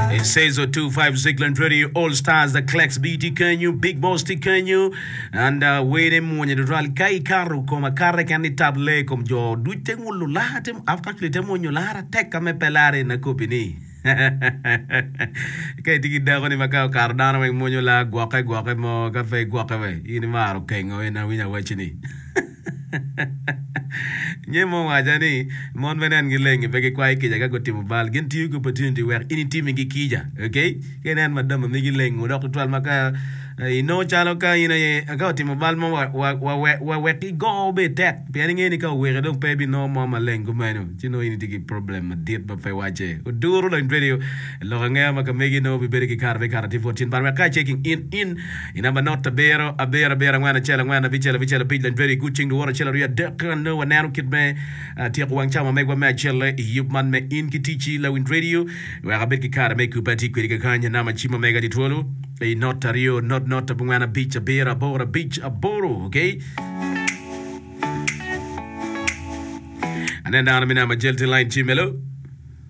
It says 025 Zigland Radio All Stars The Clex B tye kenyo, Big Boss tye kenyo and uh, wede mwonye tutwal ka ikato kom akata ken ni tab le kom jo duc te ngulu lara te actually te mwonyo lara tek ka me pe lare na kopi ni ka itye ki dako ni ma ka okato dano weng mwonyo lar gwoke gwoke mo ka pe gwoke we in imaro kengo ina winyo awacci ni Nge mo owaca ni, Mon bene en gileng-ngi, pe gikwayo kica ka gutimo bal. Gin tiyo ki opportunity wek in itimigi kica. Ok? Ka inen madam omigi leng wo dok tutwal ma ka inongo calo ka in aye ka otimo bal mo wa wek igo obed tek pien ingeyo ni ka oweke dong pe ebinongo mo maleng kumeno ci nongo in itye ki problem madit ma pe wacce. Oduro lony tweri loko angeya ma ka megi nongo bibedo ki kare me kato atir bot cin bal wek ka checking in in I namba not abiro, abiro, abiro, angwen, acel, angwen, abicel, abicel, abic, Lanjweri i gut cing luwoto acel, aryo, adek, kara nongo waneno kit me tyeko wang cawa ma megwa me acelle i yub man me In ki Ticci, Lawiny Radio, wek abed ki kare me kubbe atye kwedi kakany, anama ci ma mega di twolo i not aryo, not, not, abongwen, abic, abiro, aboro, abic, aboro, okay. Aneno dano me namba jel ti lain ci melo.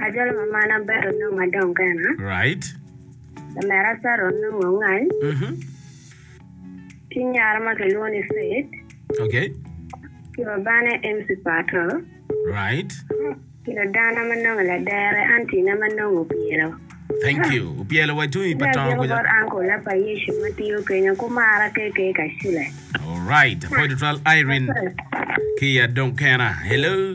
Ajolo ma man abalo onongo adong kena. Right. Lamera Sarah onongo ongany. Mhm. Ki nyara ma kilwongo ni Faith. Okay. Ki babane MC Pato. Right. Ki ladana ma nongo ladere auntie na ma nongo opyelo. Thank you. Opyelo wa itung i Ki pa tongo agiko kuca. bot uncle na pa Yecu ma tiyo kenyo kumara KK Kacule. Alright. Apo tutwal Irene ki i adong kena. Hello.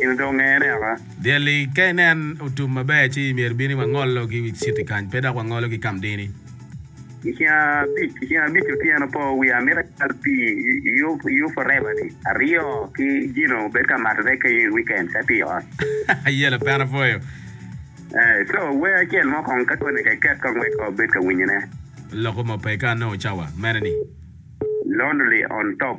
in dong ngene aka. Dyelli, ka inen otum maber ci myero ibin i Wangolo ki wi citi kany, pe dok Wangolo ki Kamdini. I ceng abic, i ceng abic otyeno po wiye amito acal pii i Yufurate-ni aryo ki Gino obed ka mato rek kenyo i wikend ka tye i ot. Aye lapena pwoyo. Eh, co, wer acel mo kong ka koni ka iket kong wek obed ka winyone. Loko mo pe ka anongo cawa mene-ni. Lonely on top.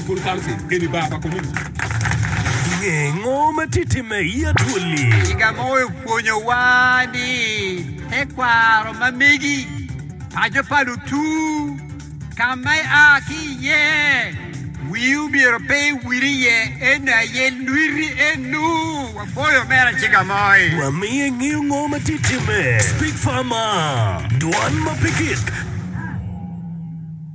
School Council keni bar pa community. Nge ngo ma tye timme i Atwoli? Kiga mo opwonyowa ni tekwaro ma megi paco pa lutur ka ma ia ki iye. Wii omyero pe iwil iye eno aye lwiti eno. Waboyo omera Kiga Moi. Wamiye ngeyo ngo ma tye timme. Speak Farmer, Dwan ma pe kit.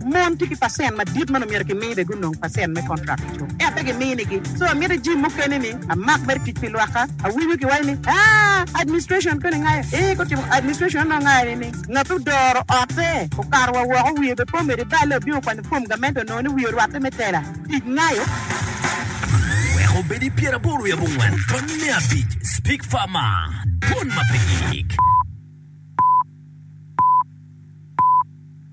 Mon tye ki pacent madit ma nongo myero kimi be gunong pacent me kontrak i cuk. Ento pe giminigi. So amito ijim mukene ni amak mere tic pi lwakka. Awinyo ki waco ni, Aa, administration koni ngayo? Ee, gutimo administration onongo ngayo ni ni ngat odoro ote, okato wa woko, wiye be pe omedo i balle, obino kwanyo fom gamente onongo ni wiye orwatte me tela. Tic ngayo. Wek obed i pyeraboro i abongwen tony me abic, Speak far ma dwon ma pe gik.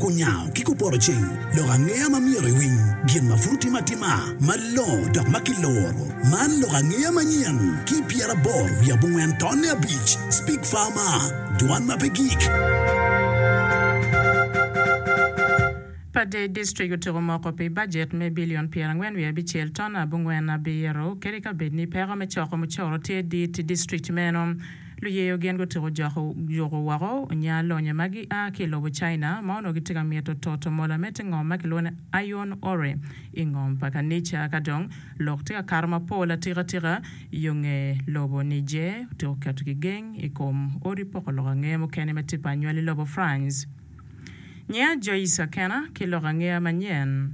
Kunyango ki kuporoceng lok angeya ma myero iwiny gin ma pud otime atima malongo dok ma kiluro. Man lok angeya manyen ki pyeraboro wiye abongwen tonne abic, Speak Farmer, Dwan ma pe Gik. Pader District otyeko moko pi bajet me bilion pyerangwen wiye abicel tonne abongwen abiro, kadi ka bed ni peko me coko mucoro tye dit i district meno. Luyeyo gin gutyeko joko juko woko onya lonyo ma gia ki i lobo China ma onongo gitye ka mito toto mola me te ngom ma kilwongo ni iron ore i ngom pa kanica. Ka dong lok tye ka kato mapol atikatika, yo nge lobo Niger otyeko keto kigeng i kom odi poko lok angeya mukene ma tye pa anywali lobo France. Nyinga Joyce Akena, ki lok angeya manyen.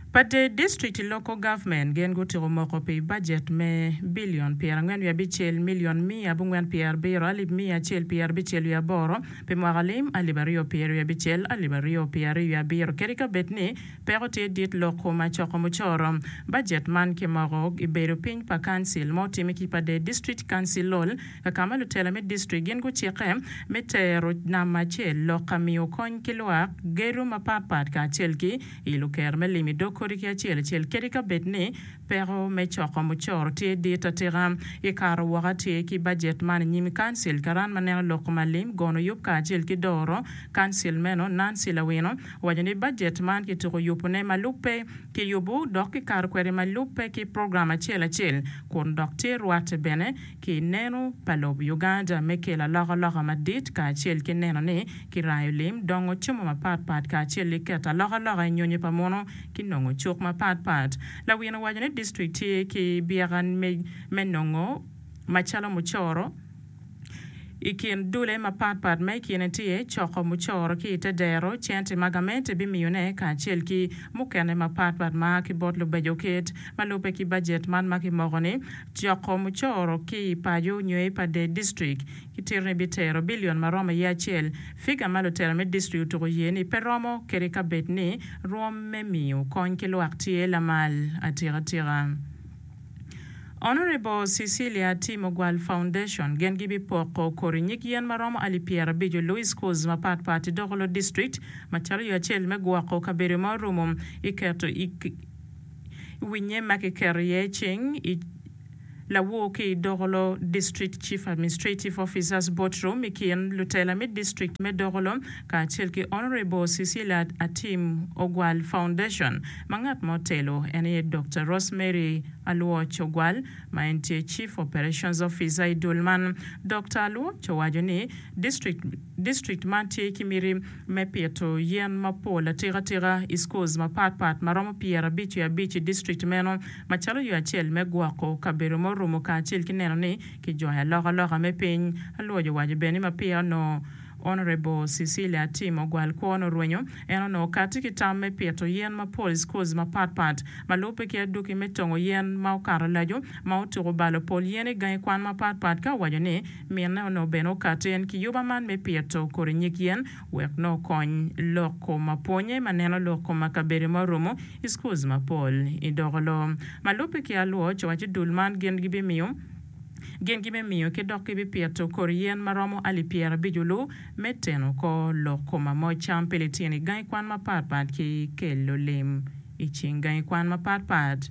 Pa Dade District Local Government gin gutyeko moko pi bajet me bilion pyerangwen wiye abicel, milion miya abongwen pyerabiro, alip miya acel pyerabicel wiye aboro, pi mwaka lim alip aryo pyer wiye abicel, alip aryo pyer aryo wiye abiro kadi ka bed ni peko tye dit lok kom acoko mucoro. Bajet man kimoko i bedo piny pa Council ma otime ki Pa Dade District Councilol, ka ma lutela me distrik gin gucikke me tero namba acel lok ka miyo kony ki lwak gedo mapatpat kacel ki ilo kero me lim i dog kodi ki acel acel kadi ka bed ni peko me coko mucoro tye dit atika. I kato woko atyer ki bajet man i nyim Kancil, karan ma neno lok ma lim, gono yub kacel ki doro Kancil meno, Nancy Lawino, owaco ni bajet man kituko yubone ma lubbe ki yubu dok kikato kwede ma lubbe ki program acel acel kun dok tye rwate bene ki neno pa lob Uganda me kelo alokaloka madit kacel ki neno ni kirayo lim, dongo cemo mapat pat kacel ki keto alokaloka i nyonyo pa muno ki nongo cuk mapat pat. Lawino owaco ni district tye ki byeka me me nongo macalo mucoro i kin dule mapat pat ma i kine tye coko mucoro ki i te dero, cente ma gamente bimiyone kacel ki mukene mapat pat ma a ki bot lubeco ket ma lubbe ki bajet man ma kimoko ni Coko mucoro ki i paco nyo i pade distrik kitito ni bitero billion maromo aye acel, figa ma lutela me distrik otuko ye ni pe romo kede kabed ni rwom me miyo kony ki lwak tye lamal atika tika. Honourable Cecilia Atim Ogwal Foundation gen gi bi poko kori nyig yen maromo alip pyera abico lu i schools mapat pat i doko lo distrik macalo yo acel me gwoko kabedo ma orumo i keto i I wi nyem ma kiketo iye cing i lawur ki i Dokolo, District Chief Administrative Officers Board Room i kin lutela me district me Dokolo kacel ki Honourable Cecilia Atim Ogwal Foundation ma ngat ma otelo en aye Doctor Rosemary Aluoch Ogwal ma en tye Chief Operations Officer i dul man. Doctor Aluoch owaco ni district man tye ki miti me pito yen mapol atikatika i schools mapatpat ma romo pyerabic ki abic i district meno macalo yo acel me gwoko kabedo ma orumo kacel ki neno ni kijwayo alokaloka me piny. Aluoch owaco bene ni ma peya onongo Honourable Cecilia Atim ogwal kwone orwenyo, en onongo kati ki tam me pito yen mapol i schools mapatpat ma lubbe ki aduki me tongo yen ma okato laco ma otuko balo pol yen i gangi kwan mapatpat ka owaco ni Minne onongo bene okato en kiyuba man me pito kodi nyig yen wek nongo okony lok kom ma pwonye ma neno lok kom ma kabedo ma orumo i schools mapol i doko loo ma lubbe ki alwor co waco dul man gin gi bimiyo gin gi me miyo ki dok ki bi pito kodi yen ma romo ali pyera abico lu me teno ko lok kom ma moc cam pi litino i gangi kwan ma pat pat ki kelo lim i cing gangi kwan ma pat pat.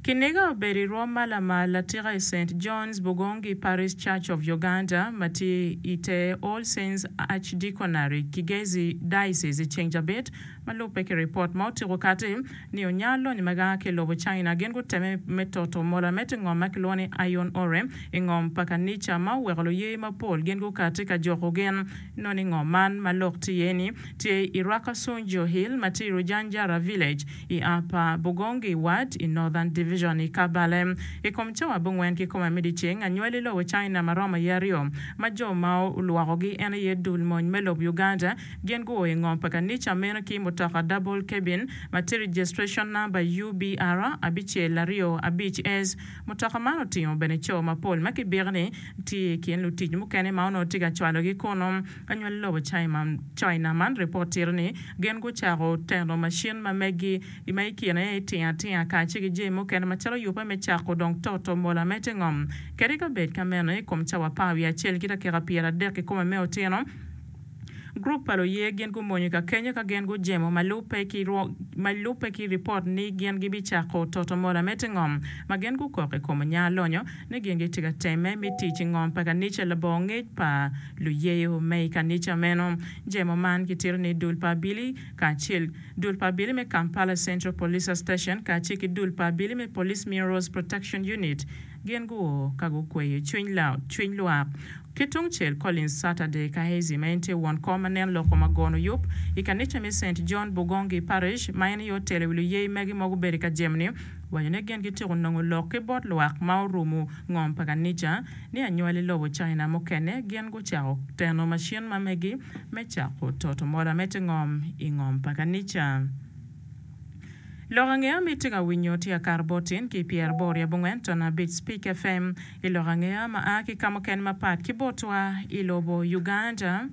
Kiniga obedo i rwom ma lamal latika i Saint John's Bugongi Parish Church of Uganda ma tye i te All Saints Archdeaconry, Kigezi Diocese i ceng cabit ma lubbe ki ripot ma otyeko kati ni onya lonyo ma gaa ki i lobo China gin gutemme me toto mola me te ngom ma kilwongo ni Iron Ore i ngom pa kanica ma oweko luye mapol gin gukati ka joko gin Noni ngo man ma lok tye iye ni tye i Rwakasung Jo Hill ma tye i Rujanjara Village i Upper Bugongi Ward i Northern Division i Kabale. I kom cawa abongwen ki kome me dyeceng anywali i lobo China ma romo i aryo ma jo ma olwokogi en aye dul mony me lob Uganda gin guo i ngom pa kanica meno ki mutoka double cabin ma tye registration number UBR abicel aryo abic S Mutoka man otingo bene co mapol ma kibiki ni tye i kin lutic mukene ma onongo tye ka cwalogi kunnu. Anywali lobo China man ripot tito ni gin gucako teno macin ma megi ma i kine aye tingatinga kacel ki jami mukene macalo yubbe me cako dong toto mola me te ngom kede ka bed ka meno i kom cawa apar wiye acel ki dakika pyera adek kikome me otyeno. Gurup pa luye gin gumonyo i kakenyo ka gin gujemo ma lubbe ki ma lubbe ki ripot ni gin gibicako toto mola me tingom ma gin gukok i kom onya lonyo ni gin gitye ka temme me tic i ngom pa kanica labongo ngec pa luyeyo me i kanica meno. Jemo man kitito ni Dul pa Abili kacel Dul pa Abili me Kampala Central Police Station kacel ki Dul pa Abili me Police Minerals Protection Unit Gin guo ka gukweyo cwiny Loud, cwiny lwak. Ki tungcel, Collins Sata De Kahazy ma en tye won kom ma nen loko ma gono yub i kanica me Saint John Bugongi Parish ma en aye otelo i wi luyeyi magi ma gubedo i ka jemo-ni owaco ni gin gityeko nongo lok ki bot lwak ma orumo ngom pa kanica ni anywali lobo China mukene gin gucako teno macin ma megi me cako toto mola me te ngom i ngom pa kanica. Lok angeya ma itye ka winyo tye Akar bot in ki Pierre bor i abongwen ton abic Spik FM i lok angeya ma a ki ka mukene mapat ki botwa i lobo Uganda.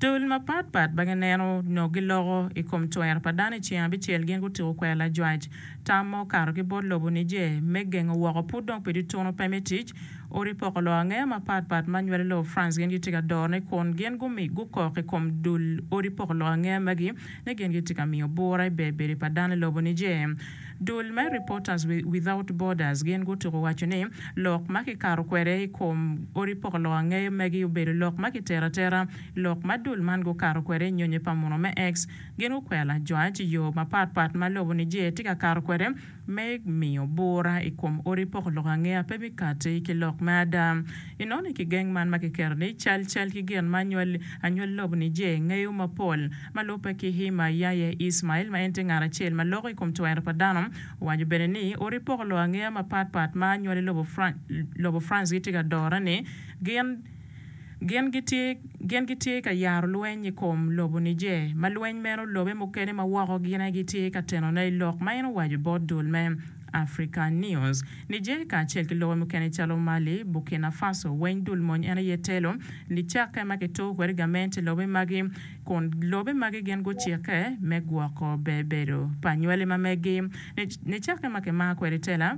Dul mapat pat ma gineno nyo giloko i kom twer pa dano i ceng abicel gin gutyeko kwero lajwac tam ma okato ki bot lobo Niger me gengo woko pud dong pi dutunu pe me tic odi poko lok angeya mapat pat ma nywalo lobo France gin gitye ka dorone kun gin gumi gukok i kom dul odi poko lok angeya magi ni gin gitye ka miyo bura i bedo-bedo pa dano i lobo Niger. Dul me Reporters Without Borders gin gutuko waco ni lok ma kikato kwede i kom odi poko lok angeyo magi obedo lok ma kitero atera. Lok ma dul man gukato kwede i nyonyo pa munu me X gin gukwela jwac i yo mapat pat ma lobo Niger tye ka kato kwede, me miyo bura i kom odi poko lok angeya pe me kati ki lok me ada. I nono i kigeng man ma kiketo ni Cal Cal ki Gin ma Anywali Anywali Lobo ni Jee ngeyo mapol ma lubbe ki Hima Yahya Ismail ma en tye ngat acel ma loko i kom twero pa dano owaco bene ni odi poko lok angeya mapat pat ma Anywali Lobo Lobo France gitye ka dore ni gin Gin gitye, gin gitye ka yaro lweny i kom lobo Niger, ma lweny meno lobe mukene ma woko gin aye gitye ka tenone i lok ma en owaco bot dul me Africanews. Niger kacel ki lobe mukene calo Mali, Burkina Faso weny dul mony en aye telo nicakke ma kituko kwede gament i lobe magi, kun lobe magi gin gucikke me gwoko bebedo pa nywali ma meggi nicakke ma kimaro kwede tela.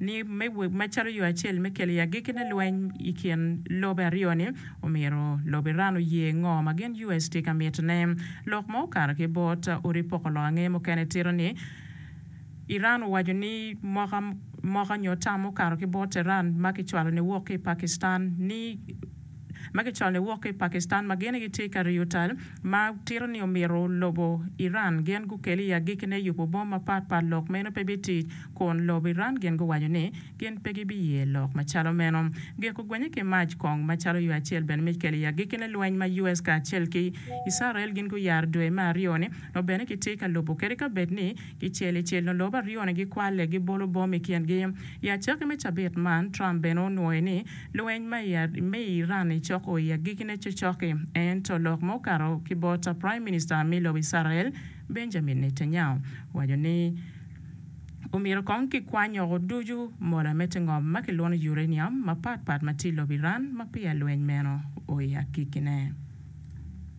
ni macalo yo acel me kelo i agikki ne lweny i kin lobe aryo ni, omyero lobo Iran oye ngo ma gin US tye ka mito ne. Lok ma okato ki bot odi poko lok ange mukene tito ni Iran owaco ni moka moka nyo tam mukato ki bot Tehran ma ki cwalo ni wok ki i Pakistan ni ma kicwalo wok ki i Pakistan ma gin gitye ka riyo tal ma tito ni omyero lobo Iran gin gukel i agikine yubo bom mapat pat lok meno pe bitic kun lobo Iran gin guwaco ni gin pe gibiye lok macalo meno gik ogwenye ki mac kong macalo yo acel bene me kelo i agikine lweny ma US kacel ki Icrael gin guyaro dwe me aryo ni nongo bene kitye ka lubo kede kabed ni I cel i cel nyo lobo aryo-ni gikwalle, gibolo bom i kingi. I acakki me cabit man, Trump bene onwoyo ni lweny me i Iran ecoko i agikine cocoki. Ento lok ma okato ki bot Prime Minister me lobo Icrael, Benjamin Netanyahu, owaco ni omyero kong kikwany woko ducu mola me te ngom ma kilwongo uranium mapatpat ma tye i lobo Iran ma peya lweny meno oa i agikine.